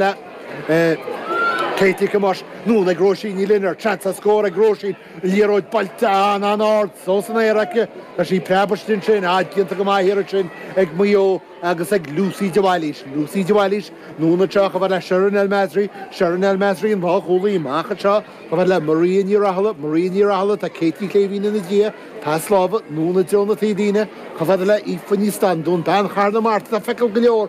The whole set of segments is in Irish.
na cleití ag cumaisc nn ag Róisín Ní Lionaird, seans a scór ag Róisín, an liathróid buailte an-ard fós san aer aici, tá sí preabarsaithe ansin, ach déanta go maith thiar ansin ag Maigh Eo agus ag Lucy de Bhailís, Lucy de Bhailís nn anseo chomh fada le Sherin El Massry, Sherin El Massry an lánchúlaí amach anseo chomh fada le Maria Ní Rathaille, Maria Ní Rathaille tá Katie Ní Shléibhín ina diaidh, pas láimhe nn i dtreo na taobhlíne, chomh fada le hAoife Ní Standún, bean Chathair na Mart atá ficheall go leor.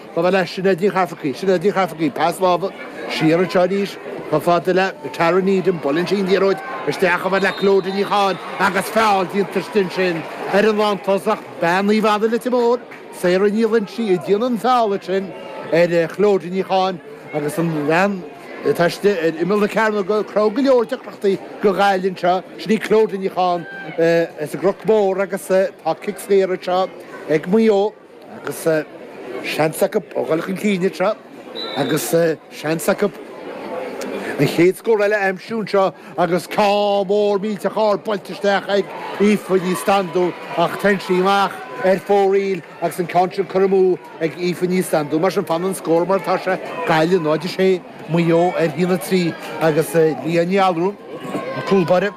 Chomh fada le Sinéad Ní Cheafarcaigh, Sinéad Ní Cheafarcaigh, pas láimhe siar anseo arís, chomh fada le Tara Needham, buaileann sí an liathróid isteach, chomh fada le Clodagh Ní Chatháin agus feall déanta istigh ansin ar an lántosach, bean Naomh Anna Leitir Móir, Sarah Ní Loingsigh a dhéanann an feall ansin ar Chlodagh Ní Chatháin agus an bhean atá istigh ar imeall na cearnóige, ag cruthú go leor deacrachtaí do Ghaillimh anseo, sin í Clodagh Ní Chatháin as an gCnoc Mór agus tá cic saor anseo ag Maigh Eo. agus seans acu a dhul chun cinn anseo agus seans acu an chéad scór eile a aimsiú anseo agus ceann mór millteach ard buailte isteach ag Aoife Ní Standún ach téann sí amach ar fóraoil agus an ceann sin curtha amú ag Aoife Ní Standún. Mar sin fanann an scór mar atá sé, Gaillimh 0-6, Maigh Eo 1-3 agus Leah Ní Allúráin, an cúlbáire,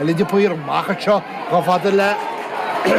Ellen de Paor, amach anseo, chomh fada le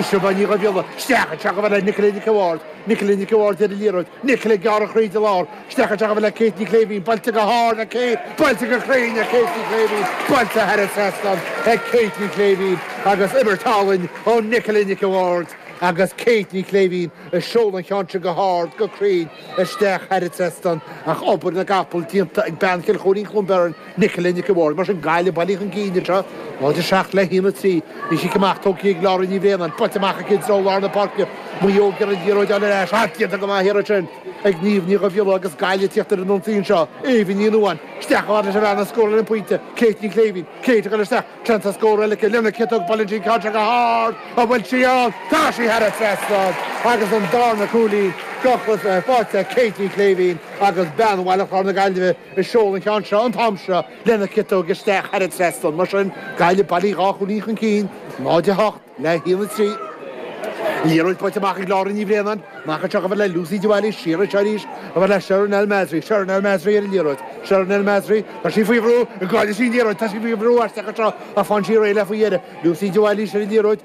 Siobhán Ní Dhubhghiolla, isteach anseo, chomh fada le Nicola Nic an Bhaird, Nicola Nic an Bhaird ar an liathróid, Nicola ag gearradh tríd an lár, isteach anseo, chomh fada le Kate Ní Shléibhín, buailte go hard ag Kate, buailte go cruinn ag Kate Ní Shléibhín, buailte thar an trasnán ag Kate Ní Shléibhín agus imirt álainn ó Nicola Nic an Bhaird agus Kate Ní Shléibhín ag seoladh an ceann sin go hard, go cruinn isteach thar an trasnán ach obair na gcapall déanta ag bean Chill Choirín-Cluain Bheirn. Nicola Nic an Bhaird, mar sin, Gaillimh, bailithe chun cinn anseo, 07 le 1, 3. Agus cic amach tógtha ag Laura Ní Bhraonáin, buailte amach aici i dtreo lár na páirce, Maigh Eo ag iarraidh an liathróid a fháil ar ais, ach déanta go maith thiar ansin ag Niamh Ní Dhubhghiolla agus Gaillimh ag tíocht ar an ionsaí anseo, Eva Ní Nuadháin, isteach chomh fada leis an bhean a scóráil an pointe, Kate Ní Shléibhín, Kate ag dul isteach, claonta scóir eile aici, lena ciotóg, buaileann sí an ceann seo go hard, an bhfuil sí ann? Tá sí thar an trasnán! Agus an darna cúilín, drochthus ar pháirc le Kate Ní Shléibhín agus bean Bhaile Chláir na Gaillimhe, Ag seoladh an ceann seo an t-am seo lena ciotóg isteach thar an trasnán. Mar sin, Gaillimh, bailithe dhá chúilín chun cinn, 0, 8 le 1, 3. Liathróid buailte amach ag Laura Ní Bhraonáin. Amach anseo chomh fada le Lucy de Bhailís. Siar anseo arís chomh fada le Sherin El Massry. Sherin El Massry ar an liathróid. Sherin El Massry. Tá sí faoi bhrú. An gcaillfidh sí an liathróid? Tá sí faoi bhrú aisteach anseo ach faigheann sí réidh léi faoi dheireadh. Lucy de Bhailís ar an liathróid.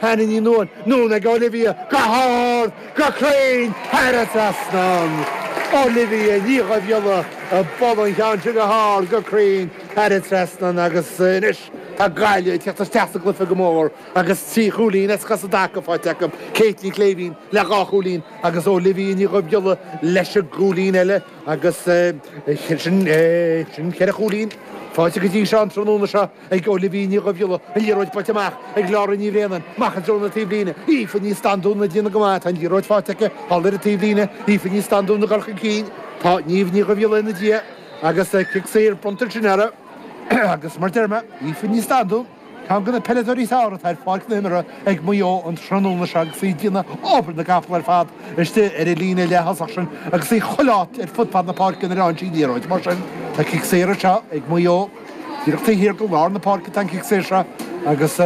Hannah Ní Nuain, anonn ag Olivia go hard, go cruinn, thar an trasnán. Olivia Ní Dhuibhghiolla ag bualadh an cheann sin go hard, go cruinn, thar an trasnán agus anois tá Gaillimh ag tíocht isteach sa gcluife go mór agus trí chúilín as cosa i dtaca faighte acu, Kate Ní Shléibhín le dhá chúilín agus Olivia Ní Dhuibhghiolla leis an gcúilín eile agus sin ceithre chúilín faighte go dtí seo an tráthnóna seo. ag Olivia Ní Dhuibhghiolla, an liathróid buailte amach ag Laura Ní Bhraonáin, amach i dtreo na taobhlíne, Aoife Ní Standún ag déanamh go maith, tá an liathróid faighte aici thall ar an taobhlíne, Aoife Ní Standún ag goil chun cinn, tá Niamh Ní Dhuibhghiolla ina diaidh agus cic saor bronnta ansin orthu agus mar deir mé, Aoife Ní Standún, ceann de na peileadóirí is fearr atá ar pháirc na himeartha ag Maigh Eo an tráthnóna seo agus í ag déanamh obair na gcapall ar fad istigh ar an líne leaththosach sin agus í chuile áit ar fud fad na páirce nuair a fhaigheann sí an liathróid mar sin, tá cic saor anseo ag Maigh Eo. Díreach taobh thiar de lár na páirce atá an cic saor seo agus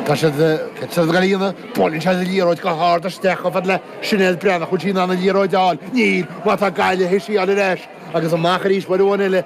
tá siad ag dul a dhéanamh, buaileann siad an liathróid go hard isteach chomh fada le Sinéad Breathnach, an bhfuil sí in ann an liathróid a fháil? Níl, mar tá Gaillimh ag síleáil ar ais agus amach arís uair amháin eile le